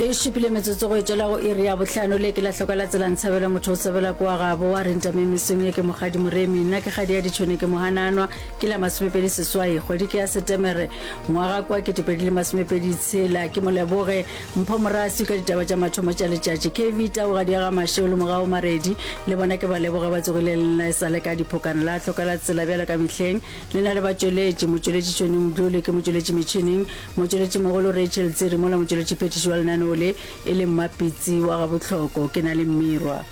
e šupile metsotso go etšela go iri ya bohlano le ke la hloka la tselang tshabela motho o tshabela kwa gabo wa renta me mesong ye ke mogadi moremi nna ke gadi ya ditšhone ke mohananwa ke la masomepedi seswai kgwedi ke ya setemere ngwaga kwa ketepedi le masomepedi tshela ke moleboge mpho morasi ka ditaba tša mathomo tša letšatši kv taogadi ya ga mašeo le mogago maredi le bona ke ba leboge ba tsogile lena e sa le ka diphokana la hloka la tsela bjalo ka mehleng le na le batšweletši motšweletši tšone module ke motšweletši metšhineng Motšweletšimogolo Rachel Tsiri mola motšweletšiphethiši wa lenaneo le e le Mmapitsi wa Gabohloko ke na le Mmirwa.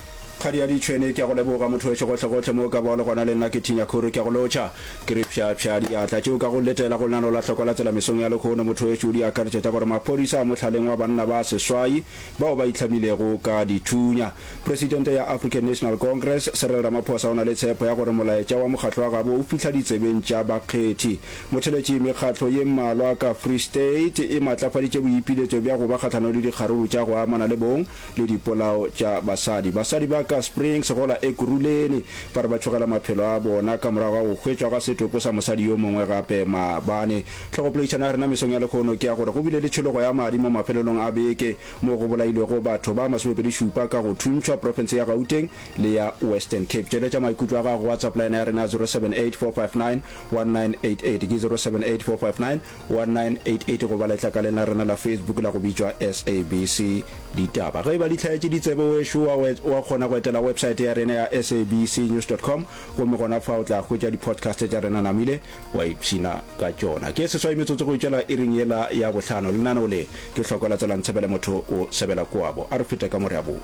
Kgadiadi Tšhwene, ke a go leboga mothowešu gohlegohle mo o ka bago le gona le nna ke Thinya Khuru ke a go lotšha. Ke re pšhapšha diatla tšeo ka go letela go lenaneo la Hloko la Tsela mesong ya lekhono mothowešu di akaretša tša gore maphodisa a mohlaleng wa banna ba seswai bao ba itlhamilego ka dithunya. Presidente ya African National Congress, Cyril Ramaphosa o na le tshepo ya gore molaetša wa mokgatlo wa gabo o fihla ditsebeng tša bakgethi. Motheletši Mekgatlo ye mmalwa ka Free State e maatlafaditše boipiletšo bja go ba kgahlano le dikgaruru tša go amana le bong le dipolao tša basadi. Basadi ba ka Springs go la Ekurhuleni ba re ba tšhogela maphelo a bona ka morago ga go hwetšwa ga setopo sa mosadi yo mongwe gape maabane. Tlhogopoledišano ya rena mesong ya lehono ke ya gore go bile le tšhologo ya madi mo mafelelong a beke mo go bolailwego batho ba masomepedi šupa ka go thuntšhwa profense ya Gauteng le ya Western Cape. Tšweletša maikutlo a gago go WhatsApp line ya rena ya 078459 1988 ke 0784591988 goba letlakaleng la rena la Facebook la go bitšwa SABC Ditaba. Ge e ba di hlaetše ditsebe wešo wa, wa kgona go etela websaete ya rena ya sabcnews.com gomme gona fa o tla hwetša di-podcast tša rena namile wa ipshina ka tšona. Ke seswai metsotso go itšela iring yela ya bohlano. Lenaneo le ke hloko la tsela ntshebele motho o sebela koabo. A re fete ka mo re a boa.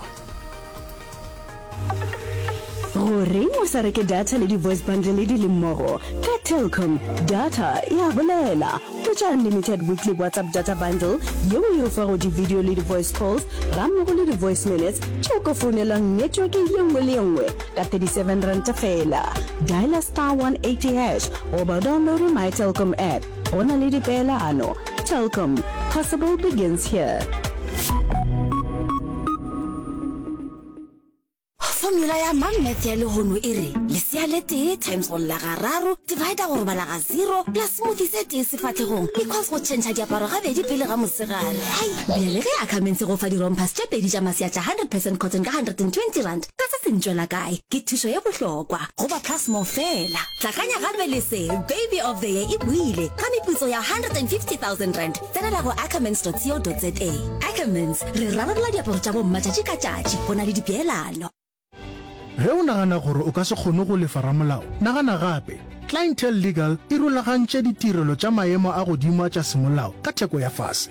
gore o sa reke data le di-voice bundle di le mmogo ka telcom data ya bolela tšwa unlimited weekly whatsapp data bundle yeo e o fago di-video le di-voice calls ga mmogo le di-voice minutes tšeo ka founelang network ye nngwe le ye nngwe ka 37 ranta fela dialer star 180 hash goba downloade my telcom app Go na le dipeelano. Telkom, possible begins here. Formula ya mang math ya lehono e re lesea le tee times go lla ga raro divider go robala ga zero plus smoothie se tee sefatlhegong equals go tšhentšha diaparo gabedi pele ga mosegare hai bjale ge a kamentshe go fa dirompers tše pedi tša maseatša 100 percent cotton ka 120 rand Ka se se ntšwela kae? Ke thušo ye bohlokwa go ba Plasmore feela. Tlakanya gape le se, Baby of the Year e buile ka meputso ya R150,000. Tsenela go ackermans.co.za. Ackermans, re rarabolola diaparo tša bomma tšatši ka tšatši go na le dipeelano. Ge o nagana gore o ka se kgone go lefa ramolao, nagana gape. Clientele Legal e rulagantše ditirelo tša maemo a godimo a tša semolao ka theko ya fase.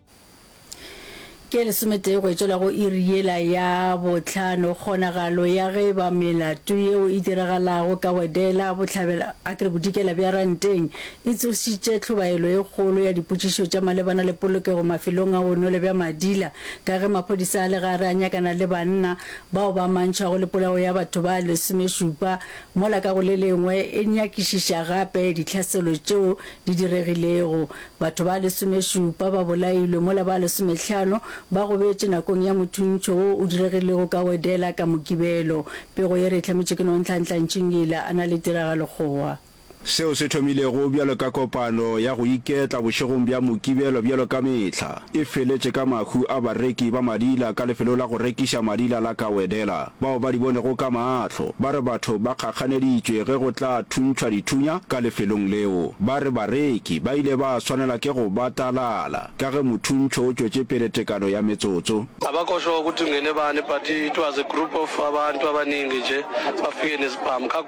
Ke lesometee go etšwela go iri yela ya bohlano, kgonagalo ya ge ba melato yeo e diragalago ka wedela bohlabela a ke re bodikela bja ranteng e tsošitše tlhobaelo e kgolo ya dipotšišo tša malebana le polokego mafelong a bonwelo bja Madila ka ge maphodisa a le gare a nyakana le banna bao ba amantšhwago le polao ya batho ba lesomešupa mola ka go le lengwe e nyakišiša gape ditlhaselo tšeo di diregilego Batho ba lesomešupa ba bolailwe mola ba lesomehlano ba gobetše nakong ya mothuntšho wo o diregilego ka Wedela ka Mokibelo. Pego ye re e hlametše ke Nonhlanhla Ntšhingila a na le tiragalokgowa. Seo se thomilego bjalo ka kopano ya go iketla bošegong bja Mokibelo bjalo ka mehla. e feletše ka mahu a bareki ba madila ka lefelo la go rekiša madila la Kawedela, bao ba di bonego ka maahlo. Ba re batho ba kgakganeditšwe ge go tla thuntšhwa dithunya ka lefelong leo. Ba re bareki ba ile ba swanela ke go batalala ka ge mothuntšho o tšwetše pele tekano ya metsotso. Abakhohlwa ukuthi kungenebani but it was a group of abantu abaningi nje bafike nezibhamu ka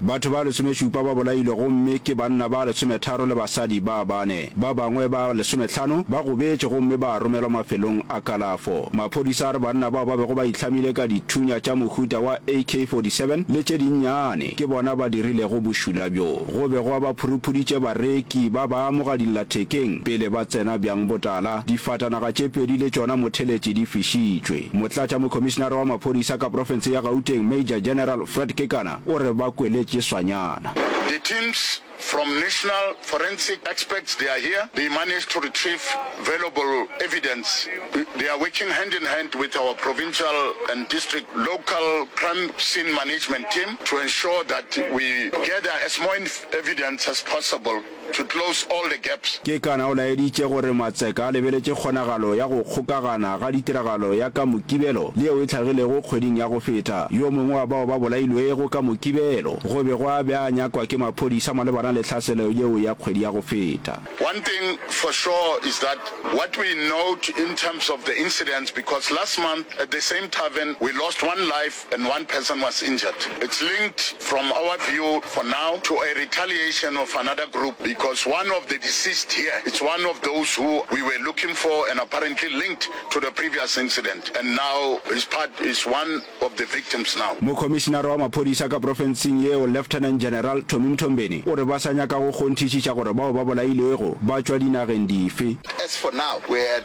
Batho ba lesomešupa ba bolailwe gomme ke banna ba lesometharo le basadi ba bane. Ba bangwe ba lesometlhano ba gobetše gomme ba romelwa mafelong a kalafo. Maphodisa a re banna bao ba bego ba itlhamile ka dithunya tša mohuta wa AK-47 le tše dinnyane ke bona ba dirilego bošula bjo. Go be gwa ba phuruphuritše bareki ba ba amoga dillathekeng pele ba tsena bjang botala, difatanaga tše pedi le tšona motheletši di fišitšwe. Motlatša Mokhomišinara wa Maphodisa ka profense ya Gauteng Major General Fred Kekana o re ba kweletše swanyana. The teams from National Forensic Experts they are here, they managed to retrieve valuable evidence, they are working hand in hand with our provincial and district local crime scene management team. to ensure that we gather as more evidence as possible to close all the gaps. Kekana o laeditše gore Matseka a lebeletše kgonagalo ya go kgokagana ga ditiragalo ya ka Mokibelo le yeo e hlagilego kgweding ya go feta. Yo mongwe wa bao ba bolailwego ka Mokibelo go be gwa be a nyakwa ke maphodisa malebana le tlhaselo yeo ya kgwedi ya go feta. One thing for sure is that what we note in terms of the incidents because last month at the same tavern we lost one life, and one person was injured. It's linked from our view for now to a retaliation of another group because one of the deceased here it's one of those who we were looking for and apparently linked to the previous incident and now is part is one of the victims now. Mokhomišinara wa maphodisa ka profenseng yeo Lieutenant General Tommy Mthombeni o re ba sa nyaka go kgonthišiša gore bao ba bolailwego ba tšwa dinageng dife. As for now we had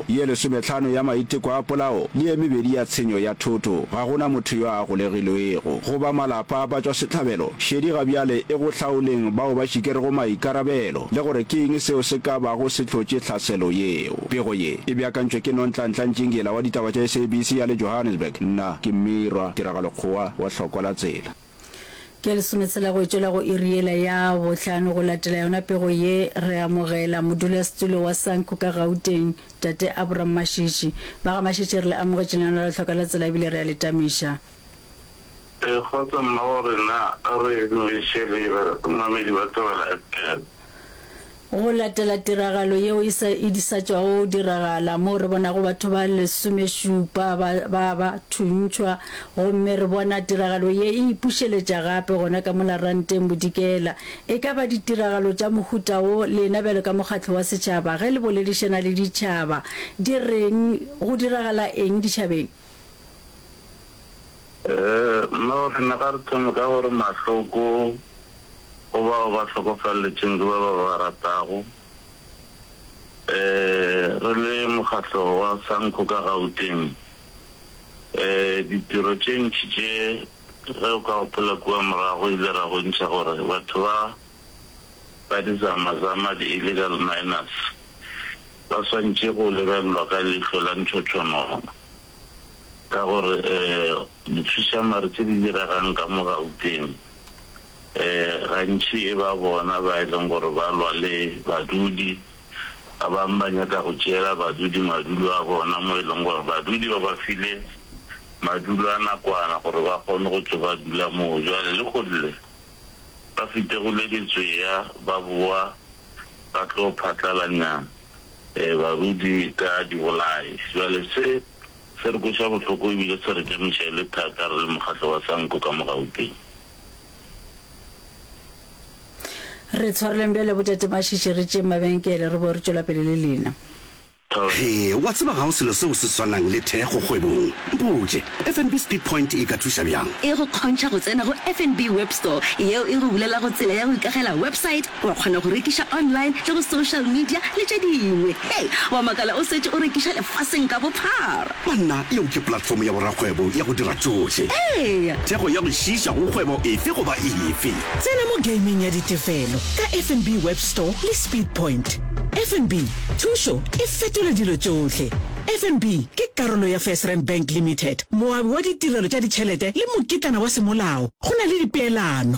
ye lesometlhano ya maiteko a polao le ye mebedi ya tshenyo ya thoto, ga go na motho yo a golegilwego. Go ba malapa a batšwasehlabelo, šedi ga bjale e go hlaoleng bao ba šikerego maikarabelo le gore ke eng seo se ka bago se hlotše tlhaselo yeo. Pego ye e beakantšwe ke Nontlantla Ntšingila wa ditaba tša SABC ya le Johannesburg. Nna ke Mmirwa Tiragalokgowa wa Hlokwa la Tsela. Ke lesometshela go tšwela go iri yela ya bohlano go latela yona pego ye, re amogela modulasetulo wa SANCU ka Gauteng, Tate Abram Mashitshi. Ba ga Mashitshi re le amogetše lenaneong la Tlhoka la Tsela ebile re a le tamiša. E, kgotsa mmago rena, re dumiše leina, mamedi ba thabela fm. Go latela tiragalo yeo e sa e sa tšwago diragala, moo re bonago batho ba lesomešupa ba ba ba thuntšhwa, gomme re bona tiragalo ye e ipušeletša gape gona ka mola ranteng bodikela, e ka ba ditiragalo tša mohuta wo, lena bjalo ka mokgatlo wa setšhaba, ge le boledišana le ditšhaba, di reng? Go diragala eng ditšhabeng? Nna o re, Naga re thome ka gore mahloko go bao ba hlokofaletšeng ke ba ba ba ratago. Re le mokgatlo wa Sanco ka Gauteng, ditiro tše ntši tše ge o ka gopola kua morago ile ra bontšha gore batho ba ba dizamazama, di-illegal miners, ba swantše go lebelelwa ka leihlo la ntšhotšhonono ka gore dithušamare tše di diregang ka mo Gauteng gantši e ba bona ba e leng gore ba lwa le badudi. Ba bangwe ba nyaka go tšeela badudi madulo a bona mo e leng gore badudi ba ba file madulo a nakwana gore ba kgone go tšwa ba dula moo. Jwale le go lle. ba fitegule ditswea ba boa ba tlo phatlalanya barudi ka dibolai. Bjale se, se re kweša bohloko e bile se re tšamiša e le thata re le mokgatlo wa Sanco ka mo Gauteng. Re tshwareleng bjale bo tate Mashishi re tšeeng mabenkele re boe re tšwela pele le lena. Hee, wa tseba ga go selo seo se swanang le thekgo kgwebong. Mpotše, FNB Speed Point e ka thuša bjang? E go kgontšha go tsena go FNB Web Store, yeo e go bulelago tsela ya go ikagela website, wa kgona go rekiša online le go social media le tše dingwe. Hee, wa makala o setše o rekiša lefaseng ka bophara! Banna, yeo ke platform ya borakgwebo ya go dira tšohle. Eya! Thekgo ya go šiiša go kgwebo efe goba efe. Tsena mo gameng ya ditefelo ka FNB Web Store le Speedpoint. FNB, thušo e fetola dilo tšohle. FNB ke karolo ya FirstRand Bank Limited, moabi wa ditirelo tša ditšhelete le mokitlana wa semolao go na le dipeelano.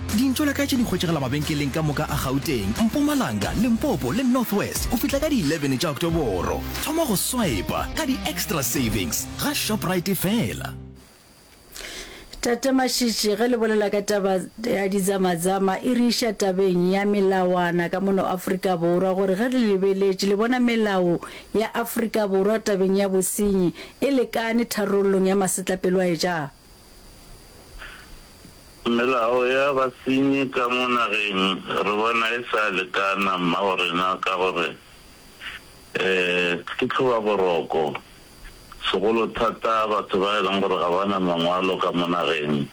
Dintšo la ka tše di hwetšagala mabenkeleng ka moka a Gauteng, Mpumalanga, Limpopo le North West go fihla ka di 11 tša Oktoboro. Thoma go swipa ka di-extra savings ga Shoprite fela. Tate Mashitshi, ge le bolela ka taba ya dizamazama e re iša tabeng ya melawana ka mono Afrika Borwa gore ge le lebeletše le bona melao ya Afrika Borwa tabeng ya bosenyi e lekane tharollong ya masetlapelo a e ja? Melao ya basenyi ka mo nageng re bona e sa lekana mmago rena ka gore ke tlhoba boroko, segolo thata batho ba e leng gore ga ba na mangwalo ka mo nageng,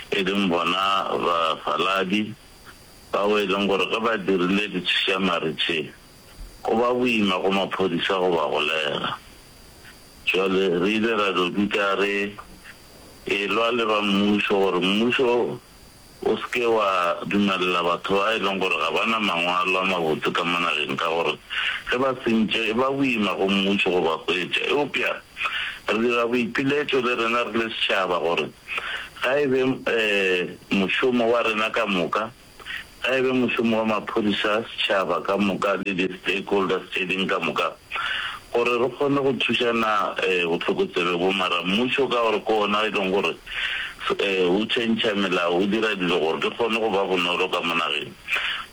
e leng bona bafaladi bao e leng gore ge ba dirile ditšhišamari tše, go ba boima go maphodisa go ba golega. Bjale re ile ra no dika re e-lwa le ba mmušo gore mmušo o se ke wa dumelela batho ba e leng gore ga ba na mangwalo a mabotse ka mo nageng ka gore ge ba sentše e ba boima go mmušo go ba hwetša. Eupša re dira boipiletšo le rena re le setšhaba gore ga e be mošomo wa rena ka moka, Ga e be mošomo wa maphodisa, setšhaba ka moka le di-stakeholders tše ding ka moka gore re kgone go thušana bohlokotsebe bo. Mara mmušo ka gore ke ona e leng gore o tšhentšha melao, o dira dilo gore di kgone go ba bonolo ka mo nageng,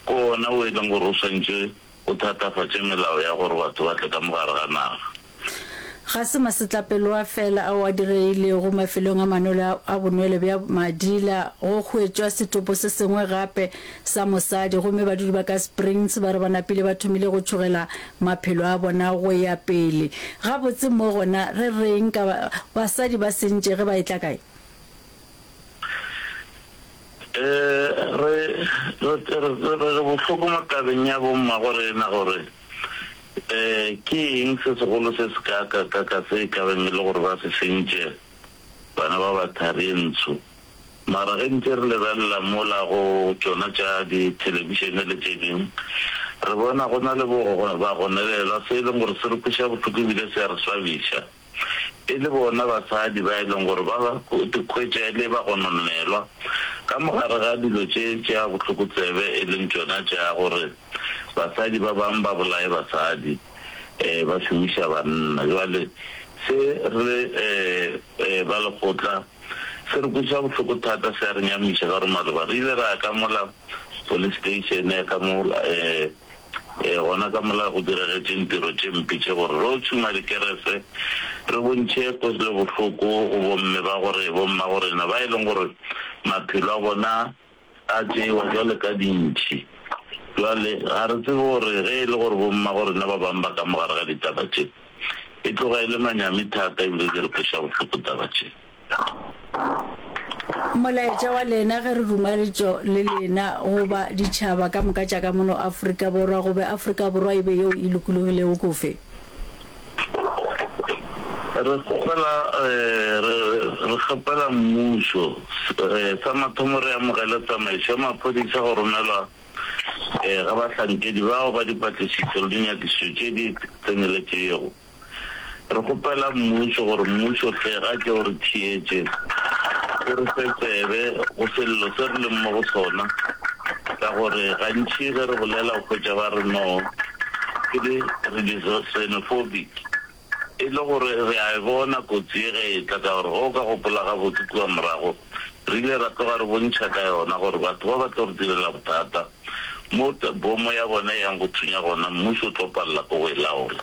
ke ona o e leng gore o swantše o thatafatše melao ya gore batho ba tle ka mo gare ga naga. Ga se masetlapeloa feela ao a diregilego mafelong a manolo a bonwelo bja Madila. Go hwetšwa setopo se sengwe gape sa mosadi gomme badudi ba ka Springs ba re ba napile ba thomile go tšhogela maphelo a bona go ya pele. Gabotse mo gona re re'ng ka basadi ba sentše ge ba etla kae? Re re bohloko mo tabeng ya bommagorena gore ke eng se segolo se se kaakakaka se e kabeng e le gore ba se sentše bana ba ba tharentsho. Mara ge ntše re lebelela mola go tšona tša dithelebišene le tše dingwe, re bona go na le bogononelwa se e leng gore se re kweša bohloko ebile se a re swabiša. e le bona basadi ba e leng gore ba ikhwetša e le bagononelwa ka mogare ga dilo tše tša bohlokotsebe e leng tšona tša gore basadi ba bang ba bolaye basadi ba šomiša banna. Bjale se re ba lekgotla se re kwešiša bohloko thata, se a re nyamiša ka gore maloba re ile ra ya ka mola police station ya ka mo. Ee, gona ka mola go diregetše ntiro tše mpe tše gore re yo tšhuma dikerese, re bontšhe kwetlelo-bohloko go bomme ba gore bomma-gorena ba e leng gore maphelo a bona a tšewa bjalo ka dintšhi. Bjale, ga re tsebe gore ge e le gore bomma-gorena ba bangwe ba ka mo gare ga ditaba tše, e tloga e le manyami thata ebile di re kweša bohloko taba tše. Molaetša wa lena ge re rumaletšo le lena go ba ditšhaba ka moka tša ka mono Afrika Borwa go be Afrika Borwa e be yeo e lokologilego kofe? Re kgopela, re, re kgopela mmušo, sa mathomo re amogele tsamaišo ya maphodisa go romelwa ga bahlankedi bao ba dipatlisišo le dinyakišišo tše di tseneletšego. Re kgopela Mmušo gore Mmušo o tle a tle o re theetše, o re fe tsebe go sello se re leng mo go sona, ka gore gantši ge re bolela o hwetša ba re no, ke di re di xenophobic, e le gore re a e bona kotsi ye ge e tla, ka gore ge o ka gopola gabotse kua morago re ile ra tloga re bontšha ka yona gore batho ba ba tlo re direla bothata mo bomo ya bona e yang go thunya gona Mmušo o tlo palela ko go e laola.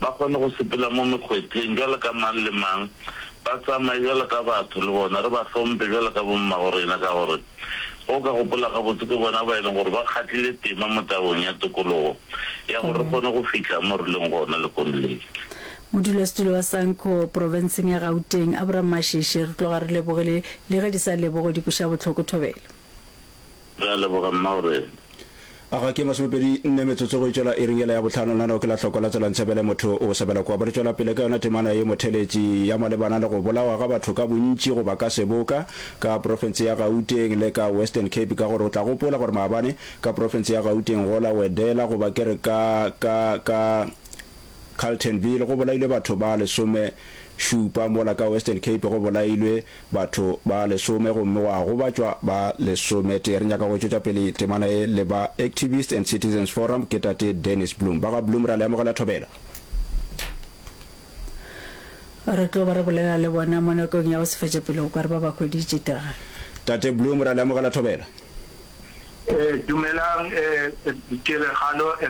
ba kgone go sepela mo mekgwetleng bjalo ka mang le mang, ba tsamaye bjalo ka batho le bona, re ba hlompe bjalo ka bommaborena, ka gore ge o ka gopola gabotse ke bona ba e leng gore ba kgatlile tema mo tabong ya tokologo ya gore re kgone go fihla mo re leng gona lekong le. Modulasetulo wa Sanco profenseng ya Gauteng, Abram Masheshe, re tloga re lebogile le ge di sa lebogwe di kweša bohloko thobela. Re a leboga, Mma Orele. A ga ke masomepedi nne metsotso go e tšwela iring yela ya bohlano, lenaneo ke la hloko la Tswelang Sebele, Motho o Sebela Kua. Bo re tšwela pele ka yona temana ye motheletši ya malebana le go bolawa ga batho ka bontši goba ka seboka ka profense ya Gauteng le ka Western Cape ka gore o tla gopola gore maabane ka profense ya Gauteng go la Wedela goba ke re ka ka ka Carletonville go bolailwe batho ba lesome šupa, mola ka Western Cape go bolailwe batho ba lesome gomme gwa gobatšwa ba lesome tee. Re nyaka go tšwetša pele temana ye le ba Activists and Citizens Forum, ke tate Dennis Bloom. Ba ga Bloom ra le amogela thobela. Re tlo ba re bolela le bona mo nakong ya go se fetša pele go kwa re ba ba hweditše tega. Tate Bloom ra le amogela thobela. Dumelang tiragalo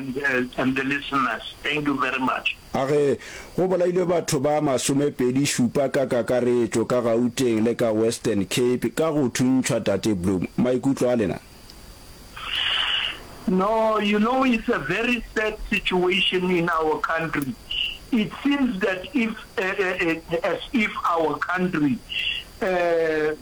and the listeners, thank you very much. A re go bolailwe batho ba masomepedi šupa ka kakaretšo ka Gauteng le ka Western Cape ka go thuntšhwa Tate Bloom. Maikutlo a lena? No, you know it's a very sad situation in our country. It seems that if as if our country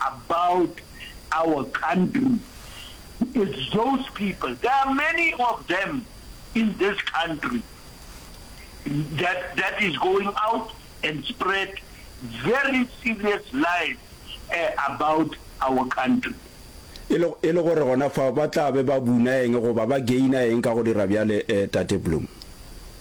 about our country it's those people there are many of them in this country that that is going out and spread very serious lies eh, about our country. E le e le gore gona fa ba tla be ba buna eng goba ba gaina eng ka go dira bjale eh, Tate Bloom?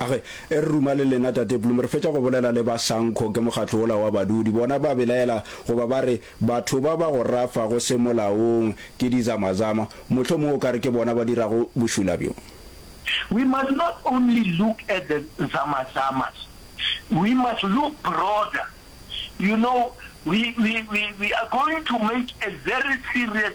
Age, e re ruma le lena, Tate Bloom. Re fetša go bolela le ba Sanco, ke mokgatlo wola wa badudi. Bona ba belaela, goba ba re, batho ba ba go rafago semolaong ke dizamazama. Mohlomong o ka re ke bona ba dirago bošula bjo. We must not only look at the zamazamas, we must look broader. You know, we, we, we, we are going to make a very serious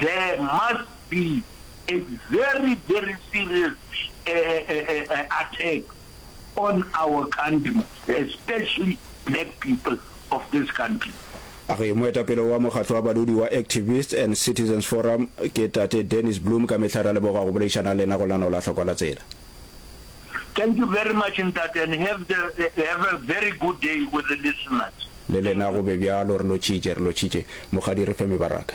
There must be a very very serious attack on our country especially black people of this country. A re moetapele wa mokgatlo wa badudi wa Activists and Citizens Forum ke Tate Dennis Bloom ka mehla re a leboga go boleišana le lena go lanola hlokwa la tsela. Thank you very much ntate and have the have a very good day with the listeners. Le lena go be bjalo re lotšitše re lotšitše mogadi re fe mebaraka.